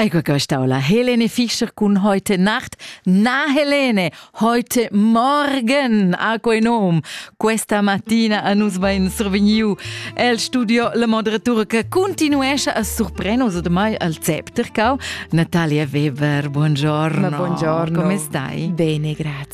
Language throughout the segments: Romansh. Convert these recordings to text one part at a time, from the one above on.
Ego la Helene Fischer cun heute Nacht. Na Helene, heute Morgen a quei nom. Questa mattina a nus ben survegniu el studio la moderatura che continuesce a sorprendere ormai al Zeptercau. Natalia Weber, buongiorno. Ma buongiorno. Come stai? Bene, grazie.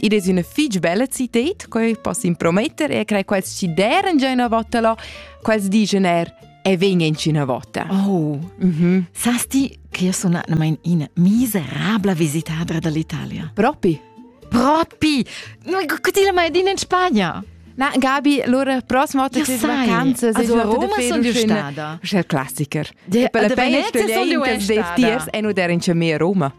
Id es üna fich bella cited, que poss imprometter e crei quels chi deren già üna vota là, quels digen er e vegnan üna vota. Oh, mhm. Sas ti che io sono atnamain in miserabla visitadra dall'Italia? Propi? Propi! Che ti la mai din in Spagna? Na, Gabi, allora prossima volta che vacanze sei also Roma sono io stata. C'è il classiker. Ja, e per le Venezia sono io stata. Tiers e non era in Roma.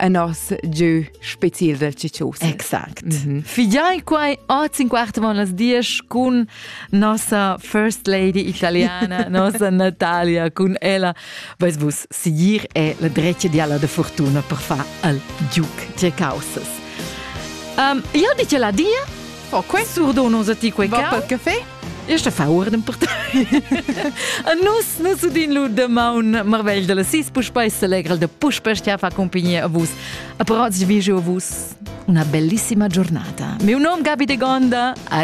en nos giu spezial del ciccius. Exact. Mm -hmm. Figiai quai oz in quart von las dies cun nossa First Lady italiana, nossa Natalia, cun ella vais vus siguir e la dretga diala de fortuna per far al giuc tge causas. Um, io dice la dia Oh, quei surdo non sa ti quei Va per caffè? E sta fa urdem per te. A nus nus udin lu demaun marvegl dalla sis puspei selegral de puspei stia fa compagnia a vus. A però vi jeu a vus una bellissima giornata. Meu nom Gabi de Gonda, a